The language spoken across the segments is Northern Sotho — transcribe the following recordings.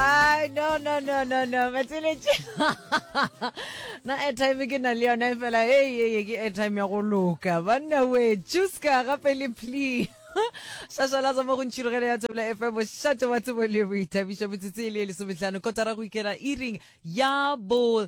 Ay, no no no no no matseletše na airtime ke na le yona e fela hey hey ke airtime ya go loka banna we chuska gape le plea shashala tsa mo go ntšhirogele ya tsebela fm bošate wa tsebo le boithabišo metsotso e le e lesometlhano kotara go ikela iring ya bo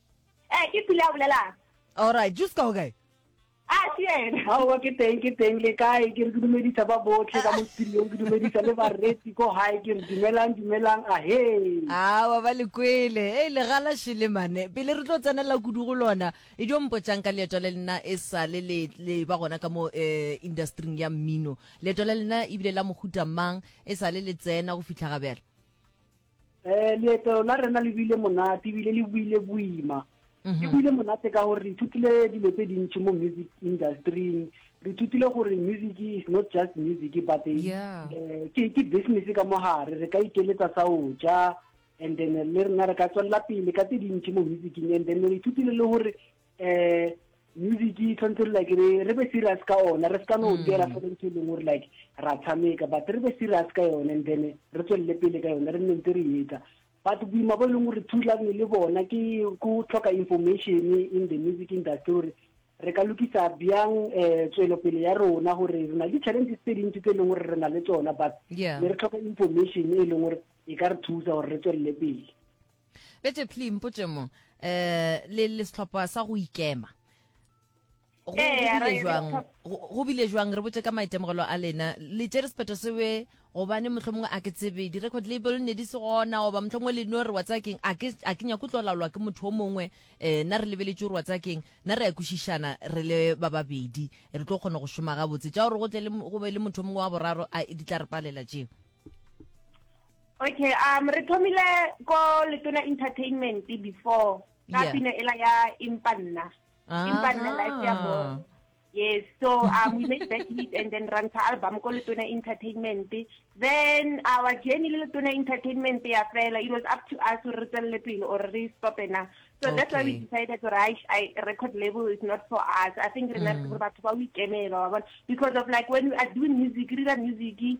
Eh, ke pula a bolelang. All right, just ka okay. Ah, ke yena. Aowa ke teng ke teng le kae ke re ke dumedisa ba botlhe ka mo studiong ke dumedisa le bareti ko gae ke re dumelang dumelang ahe awa ba le kwele e le gala shele mane pele re tlo tsenela kudu go lona e dio mpotšang ka leeto le lena e sale le le ba gona ka mo eh, industring ya mmino leeto la lena ebile la mohuta mang e sale le tsena go fitlha gabjale Eh, leeto la rena le buile monate ebile le buile boima le mhm. buile monate ka gore re ithutile dilo tse dintšhi mo music industryng re ithutile gore music is not just music but eh, eh, ke ke business ka mogare re ka ikeletsa sa o ja and then le rena re ka tswelela pele ka tse dintšhi mo musicing and then re ithutile le gore eh music e tshwanetse re like re re be serious ka ona re seka no dira mm. fela ntho e leng gore like ra tshameka but re be serious ka yone and then re tswelele pele ka yone re nne ntse re etsa but boima bo e leng gore thulagne le bona ke go tlhoka information in the music industry gore re ka lokisa bjang um eh, tswelopele ya rona gore re na le di-challenges tse dintsi tse e leng gore re na le tsona but ne re tlhoka information e leng gore e ka re thusa gore re tswelele pele Bete pli mpotše mo eh, le le sehlopha sa go ikema go Ee, go bile re- jwang go go bile jwang re botse ka maitemogelo a lena le tšere sephetho sewe gobane motlho mongwe a ke tsebe di-record label ne di se gona goba motlho mongwe le no re wa tsakeng a ke a ke nyako tlo laolwa ke motho o mongwe um na re lebeletse gore wa tsakeng na re ya kwešišana re le ba babedi re tlo kgona go šoma gabotse tša gore go tle le mo- go be le motho o mongwe wa boraro a di tla re palela tšeo Okay, um re thomile ko Letona Entertainment before ka yeah. pina ela ya Impa nna. Ah. Impa nna life ya bo. Yes, so um, we made that hit and then run to album ko Letona Entertainment. Then our journey le Letona Entertainment ya fela, it was up to us re tselle pele or re stop na. So okay. that's why we decided to I, I record label is not for us. I think mm. remember mm. batho ba we kemela because of like when we are doing music, re music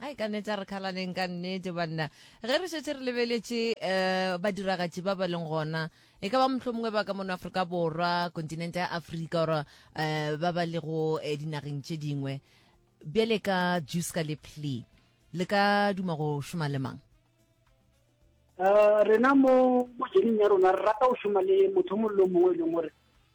Ai ka neta re khalaneng ka nnete banna ge re šetše re lebeletše um badiragatši ba ba leng gona e ka ba motlho mongwe ba ka mono aforika borwa kontinente ya aforika ora um ba ba lego eh, dinageng tše dingwe bjale ka juska le plea le ka duma go šoma le mang um rena mo mojening ya rona re rata go šoma le motho mongwe le o mongwe e leng gore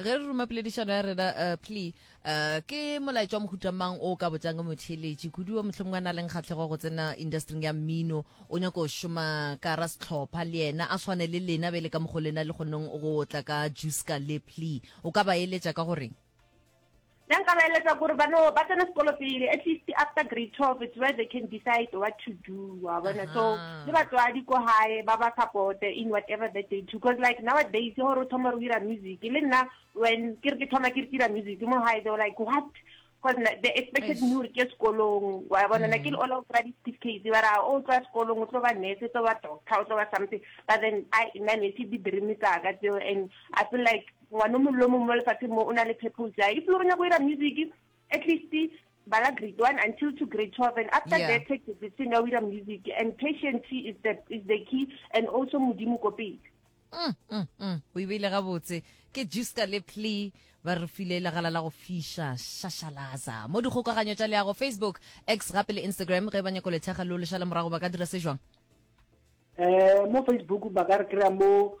ge re ruma poledišano ya rena uh, plea uh, ke molaetša wa mohuta mang o ka botšang ka motheeletši kudu wa mohlomongwe a na leng kgatlhego go tsena industring ya mmino o nyako go šoma ka ra setlhopha le yena a tshwane le lena be le ka mogo lena le kgoneng go tla ka juice ka le plea o ka ba eletša ka goreng Nna nka ba eletsa gore ba no ba tsena sekolo pele at least after grade 12 it's where they can decide what to do wa bona so le batswadi ko gae ba ba support in whatever that they do because like nowadays gore o thoma re dira music le nna when ke re ke thoma ke re dira music mo gae they were like what because they expected me gore ke sekolong wa bona na ke le all of ra di-certificate ba ra o tswa sekolong o tlo ba nurse tlo ba doctor o tlo ba something but then i nna ne se di-dream tsaka tseo and i feel like Ngwana o mongwe le o mongwe mo lefatsheng mo o na le purpose ya If lo re nyako ira music, at least bala grade one until to grade twelve and after yeah. that take decision ya o ira music and patience is the, is the key and also modimo ko pele mm, mm, mm. o e beile gabotse ke juska le plea ba re file legala la go fiša šašalaza mo dikgokaganyo tša leago facebook x gape le instagram ge ba nyako lethekga lo lešala morago ba ka dira se jwang um mo facebook ba ka re kry-a mo